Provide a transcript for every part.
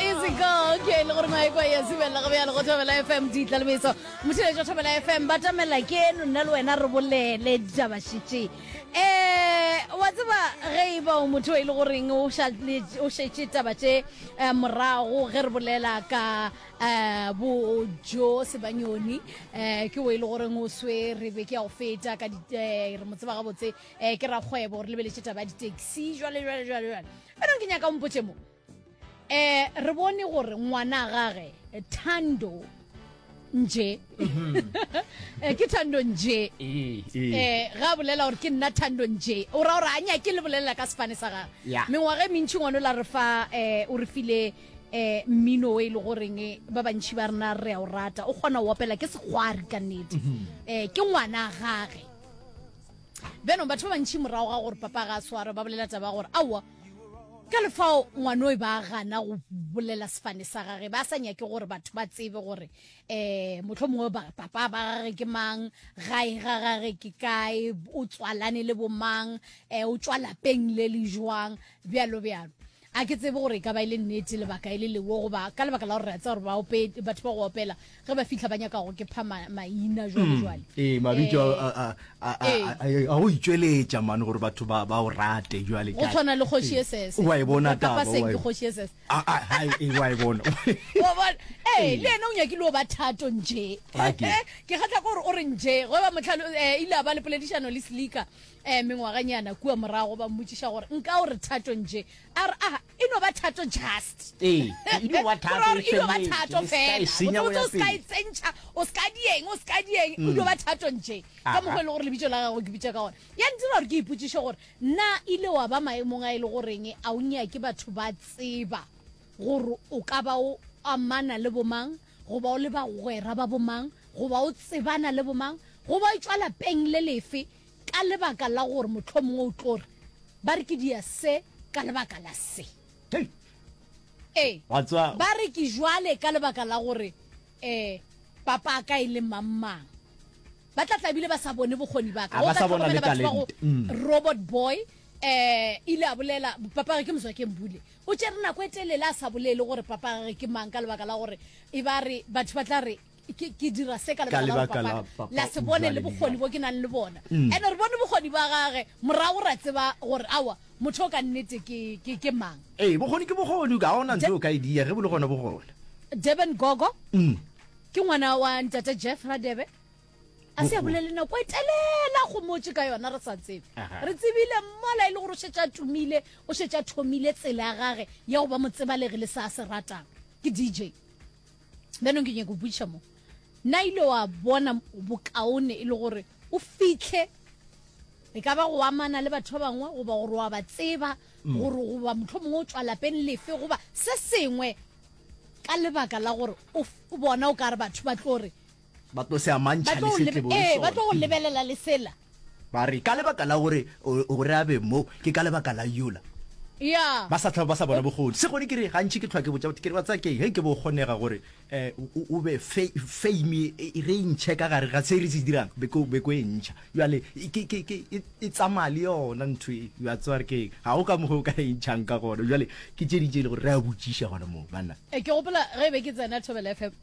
Easy go, okay, le gore maekwa ya zibelela go bjalo go thobela FM di tlalemetso. Motheletša thobela FM ba tamela ke eno nna le wena re bolele ditaba šitše. Eh, wa tseba ge e ba o motho e le goreng o šale- o šetše taba tše eh, morago ge re bolela ka eh, bo jo sebanyoni eh, ke o e le goreng o swere be ke ya go feta ka di- eh, re mo tseba gabotse eh, ke rakgwebo re lebeletše taba ya di-taxi jwale jwale jwale jwale anong ke nyaka o mpotše mo eh re bone gore ngwana gage thando nje mhm. eh, ke thando nje ee. eh ga bolela gore ke nna thando nje o ra gore a nya ke le bolelela ka sefane sa gage mengwaga e mentšhi ngwana o la re fa um o re file eh mmino o e le goreng eh, ba bantšhi ba rena re a o rata o kgona go opela ke segwari ka nnete mhm. eh ke ngwana gage benong batho ba bantšhi morago ga gore papa ga a swara ba bolela taba gore aowa Ka lefao ngwanoi ba gana go bolela sefane sa gage, ba sa nyake gore batho ba tsebe gore um motlho mongwe papa ba gage ke mang, gae ga gage ke kae, o tswalane le bomang, um o tswa lapeng le le jwang, bjalo bjalo a ke tsebe gore e ka ba e le nnete lebaka e le lewo goba ka lebaka la gore re a tsa gore batho ba go opela ge ba fitlha ba nyaka go ke pha maina jwalejwale mm. ee mabitso eh. ee. a go itšweletša mane gore batho ba o rate jwale go tshwana le kgoši e sese wa e bona taba wa e bona ee le ena o nyakile o ba thato nje ke kgatla gore o re nje go ba motlhalo eh, ile a ba le poledišano le sleaker um eh, mengwaganyana kua morago ba mmotšiša gore nka o re thato nje a re a ah, e no ba thato just ee e no ba thato e no ba thato fela o senya o ska e tsentša o ska dieng o ska dieng o no ba thato nje ka mokgwa le gore le bitso la gago ke bitsa ka gona ya ntira gore ke ipotsiše gore na ile wa ba maemong a ile e goreng a o nya ke batho ba tseba gore o ka ba o amana le bomang go ba o le bagwera ba bomang go ba o tsebana le bomang go ba o tswa lapeng le lefe Ka lebaka la gore mohlomongwe o tlo re, Ba re ke dia se ka lebaka la se. Hei! Ee, Wa tseba, ba re ke jwale ka lebaka la gore um papa a ka e le mang-mang. Ba tla tla bile ba sa bone bokgoni ba ka. A Go ba ka sa bona le tlhokomela batho ba go talente. Mm. Robot Boy um ile a bolela, papa gage ke Mzwakeng Bule. O tšere nako e telele a sa bolele gore papa gage ke mang ka lebaka la gore e ba re batho ba tla re ke ke dira se ka Ka lebaka la lebaka la papa papa, la se bone jwale le bokgoni dijalo. bo ke nang le bona Mm. ene re bone bokgoni ba gage morago ra tseba gore awa motho o ka nnete ke ke ke mang ee bokgoni ke bokgoni ga ona ntho o ka e dia ge bo le gona bo gona durban gogo Mm. ke ngwana wa ntate jeff radebe a se a Bokgoni. bolele nako e telela go motse ka yona re sa tsebe Aha. re tsebile mmola e le gore o šetše a tumile o šetše a thomile tsela ya gage ya go ba motsebalegi le se a se ratang ke dj bjanong ke nyaka go botšiša mo na ile wa bona bokaone e le gore o fitlhe e ka ba go amana le batho ba bangwe goba gore wa ba tseba mm. gore goba motlho mongwe o tswa lapeng lefe goba se sengwe ka lebaka la gore o bona o ka re batho ba tlo re ba tlo se amantšha le se tlebo le sona ba tlo go lebelela le sela ba re ka lebaka la gore gore a be mo ke ka lebaka la yola ya ba sa tlhaba ba sa bona bogodi se gone ke re gantši ke tlhwa ke botsa ke re ba tsa ke he ke bo kgonega gore um o be fame e re ntšhe ka gare ga se re se dirang beko e ntšha jale e tsamaya le yona ntho e ya tsware ke ga o ka mogo o ka e ntšhang ka gona jale ke tše ditše e le gore re a botšiša gona moo banna ke gopola ge e be ke tsena thobela fm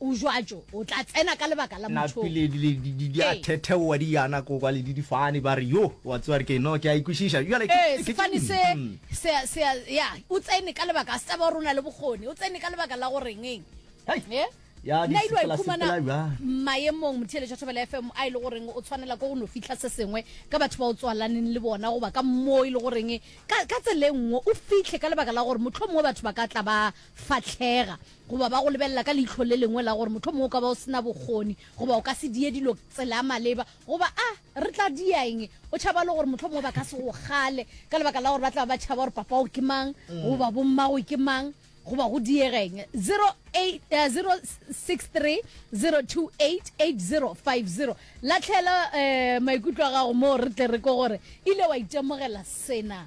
O jwatšo, o tla tsena ka lebaka la motho o. Napile di, di, di, di a thetheoa di yana ko kwa le di difane, ba re, Yo, wa tseba re ke no, ke a e kwešiša. Bjale ke, Ee, ke, sefane ke, se, mm. se, se, ya, o tsene ka lebaka, a se tsaba gore o na le bokgoni, o tsene ka lebaka la go reng eng. Hei! Ee? Ya di Nna ilwa sepela, ikhumana sepela bjang. maemong motheeletši wa Thobela FM a e le goreng o tshwanela ke go no fihla se sengwe ka batho ba o tswalaneng le bona goba ka moo e le goreng ka, ka tsela e nngwe o fihle ka lebaka la gore mohlomongwe batho ba ka tla ba fahlega. goba ba go lebelela ka leihlo le lengwe la gore mohlomongwe o ka ba o se na bokgoni goba o ka se die dilo tsela maleba goba a re tla dia eng. O tšhaba le gore mohlomongwe ba ka se go kgale ka lebaka la gore ba tla ba ba tšhaba gore papago ke mang goba bommago ke mang goba go diega eng. 0806302880. Lahlela um maikutlo a gago moo re tle re ko gore ile wa itemogela sena.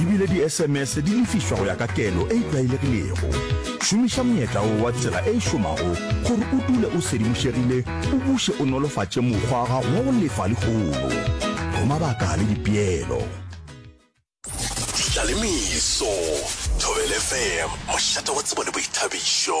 ebile di-sms di lefišwa go ya ka kelo e e tlwaelegilego šomiša monyetla o wa tsela e e šomago gore o dule o sedimošegile o buše o nolofatše mokgwa wa gago wa go lefa legolo roma baka le dipeelo tlalemiso thobelefm mošate wa tsebo le boithabišo